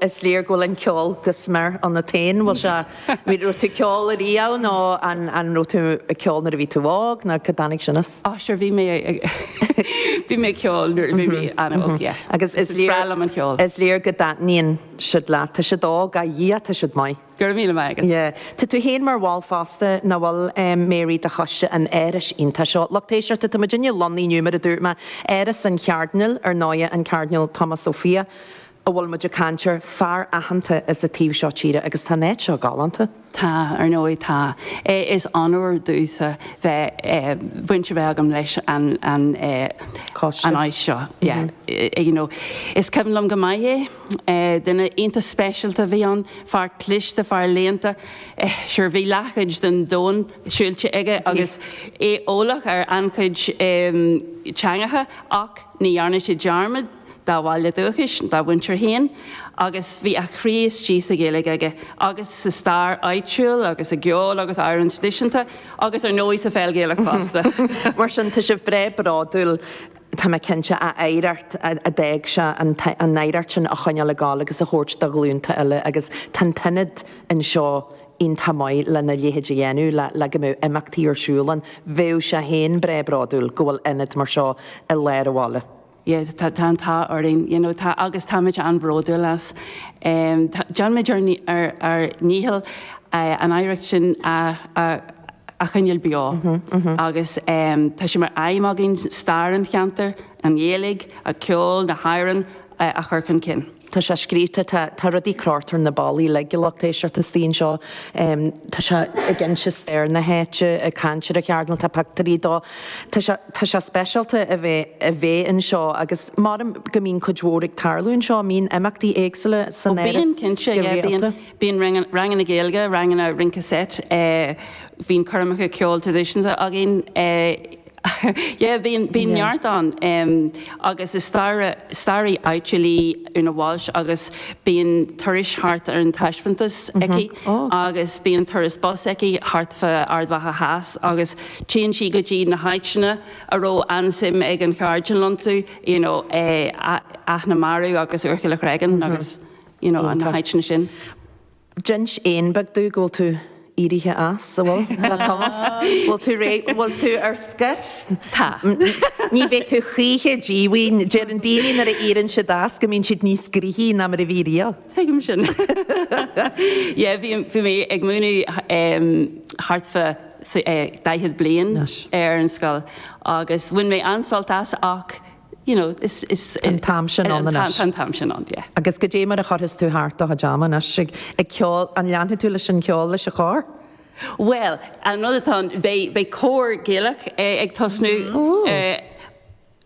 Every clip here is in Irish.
is léir go bhfuil an ceol go smior ionat féin. Bhfuil sé, raibh tú ceol ariamh nó an an raibh tú ag ceol nuair a bhí tú óg nó cá dtáinig sin as? Á sure bhí mé ag bhí mé ag ceol nuair a bhí mé ana óg yeah. Agus is léir, bhreá liom an ceol. Is léir go dtaitníonn siad leat. Tá siad óg a Dhia tá siad maith. Go raibh míle maith agat. Yeah. Tá tú féin mar bhall fosta nach bhfuil em Mary de choiste an Árais iontach seo. Lucht éisteachta tá muidinne lonnaithe inniu mar a dúirt mé Áras an Chairdinéil ar ndóighe an Cairdinéal Tomás Ó Fiaich. a bhfuil muid ag caint air, fear aitheanta as an taobh seo tíre agus tá an áit seo galánta. Tá, ar ndóigh tá. Is onóir domhsa bheith, baint a bheith agam leis an, an Coiste. an áis seo. Yeah. You know, is cuimhin liom go maith é. Duine iontach speisialta a bhí ann, fear cliste, fear léannta. Sure, bhí leathchuid den domhan siúilte aige agus é eolach ar an-chuid teangacha ach ní dhearna sé dearmad, dá bhaile dúchais, dá mhuintir féin agus bhí a chroí istigh sa Ghaeilge aige agus sa stair áitiúil agus i gceol agus amhráin traidisiúnta agus ar ndóigh sa pheil Ghaelach fosta. Mar sin, tá sibh breá bródúil, tá mé cinnte, an oidhreacht a d'fhág sé, an oidhreacht sin a choinneáil ag dul agus a thabhairt do ghlúnta eile agus tá an t-ionad anseo iontach maith lena leithéid a dhéanamh, le go mbeadh imeachtaí ar siúl ann. Bheadh sé féin breá bródúil go bhfuil ionad mar seo i lár an bhaile. yeah tá tá an t-ádh orainn you know tá agus táimid an-bhródúil as. Em tá déanaimid ár ár ár ndícheall eh an oidhreacht sin a a a choinneáil beo agus em tá sé mar aidhm againn stair an cheantair, an Ghaeilge, an ceol, na hamhráin a chur chun cinn. Tá sé scríobhta, tá, tá rudaí crochta ar na ballaí uilig, a lucht éisteachta, istigh anseo. Tá sé ag inse stair na háite, ag caint ar an Chairdinéal, tá pictiúirí dó. Tá sé, tá sé speisialta a bheith, a bheith anseo agus maram go mbíonn cuid mhór ag tarlú anseo, mbíonn imeachtaí éagsúla san Áras Ó bíonn cinnte, yeah, bíonn, bíonn ranganna, ranganna Gaeilge, ranganna rince seit, eh, bíonn coirmeacha ceoil traidisiúnta againn, eh, Yeah, bíonn, bíonn Yeah. neart ann. Em, agus is staraí, staraí áitiúil í Una Walsh agus bíonn turais thart ar an taispeántas aici Oh, ok. agus bíonn turas bus aici thart fá Ard Mhacha Theas agus téann sí go dtí na háiteanna a raibh an-suim ag an Chairdinéal iontu, you know, eh, a- Áth na Marbh agus Úrchill an Chreagáin agus, you know, na Iontach. háiteanna sin. D'inis éan beag domh go bhfuil tú éirithe as, an bhfuil? Le tamall. Bhfuil tú réidh, bhfuil tú ar scor? Tá. Ní bheidh tú choíche díomhaoin. Deireann daoine nuair a éiríonn siad as go mbíonn siad níos gnoithí ná mar a bhí riamh. Tuigim sin. Yeah, bhí mé ag múineadh thart fá daichead bliain ar an scoil agus bhain mé an-sult as ach you know, is, is, Tá an t-am sin ann anois. Tá an t-am sin ann, yeah. Agus cad é mar a chuirfeas tú thart do chuid ama anois ag, ag ceol, an leanfaidh tú leis an cheol leis an chór? Bhuel, an rud atá ann, beidh, beidh cór Gaelach ag tosnú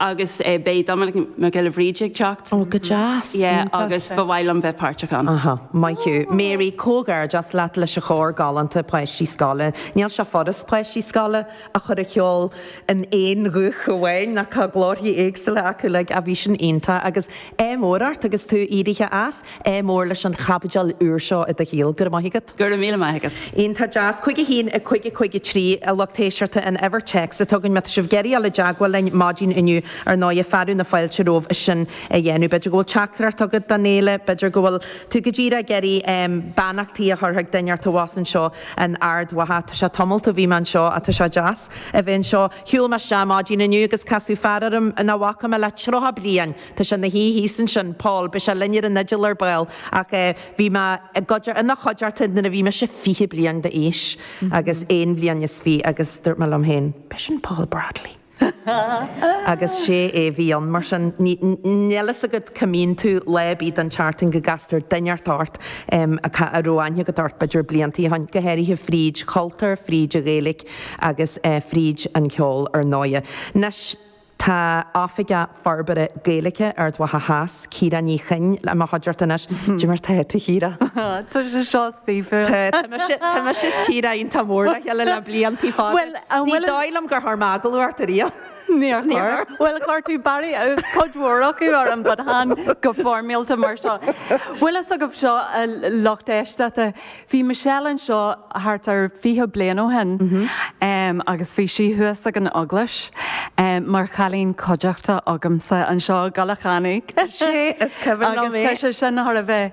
agus beidh Dominic Mac Giolla Bhríde ag teacht. Ó, go deas, iontach. Yeah, agus ba mhaith liom bheith páirteach ann. Ahá, maith thú. Mary, comhghairdeas leat leis an chór galánta páistí scoile. Níl sé furast páistí scoile a chur a cheol in aon ghuth amháin ach tá glórthaí éagsúla acu like ah bhí sin iontach agus ádh mór ort agus tú éirithe as, ádh mór leis an chaibidil úr seo i do shaol, go raibh maith agat. Go raibh míle maith agat. Iontach deas. 51553, a lucht éisteachta, an uimhir téacs atá againn má tá sibh ag iarraidh a dul i dteagmháil linn maidin inniu ar ndóighe fearadh na fáilte romhaibh sin a dhéanamh. B'fhéidir go bhfuil teachtaireacht agat don fhéile, b'fhéidir go bhfuil tú go díreach ag iarraidh beannachtaí a chur chuig duine inteacht abhus anseo. In Ard Mhacha. Tá sé tamalt ó bhí mé anseo, tá sé deas, a bheith anseo. Shiúil mé isteach maidin inniu agus casadh fear orm nach bhfaca mé le tríocha bliain. Tá sé ina shuí thíos ansin, Paul, beidh sé linn ar an fhidil ar ball, ach bhí mé i gcuid, ina chuideachta nuair a bhí mise fiche bliain d'aois agus aon bhliain is fiche agus dúirt mé liom féin, ab é sin Paul Bradley. Agus sé é a bhí ann, mar sin. Níl a fhios agat cá mbíonn tú lá ar bith den tseachtain go gcastar duine inteacht ort a raibh aithne agat orthu, b'fhéidir, bliantaí ó shin, go háirithe fríd chultúr, fríd an Ghaeilge agus fríd an cheol, ar ndóighe. Anois tá oifigeach. Forbartha Gaeilge Ard Mhacha Theas, Ciara Ní Chuinn, i mo chuideachta anois. Cad é mar tá tú, a Chiara. Tá sé seo saoithiúil. Tá, tá mise, tá mise is Ciara iontach mór le chéile le bliantaí fada. Bhuel, an bhfuil. Ní dóigh liom gur chuir mé agallamh ort ariamh. Níor chuir. Bhuel, chuir tú b'fhéidir cuid mhór acu orm, but chan go foirmiúlta mar seo. Bhfuil a fhios agaibh seo a lucht éisteachta. Bhí Michelle anseo thart ar 20 bliain ó shin agus bhí sí thuas ag an eaglais mar chailín coimhdeachta agamsa anseo i gCoilleach Eanach. Is cuimhin liom é. Agus tá sé sin thar a bheith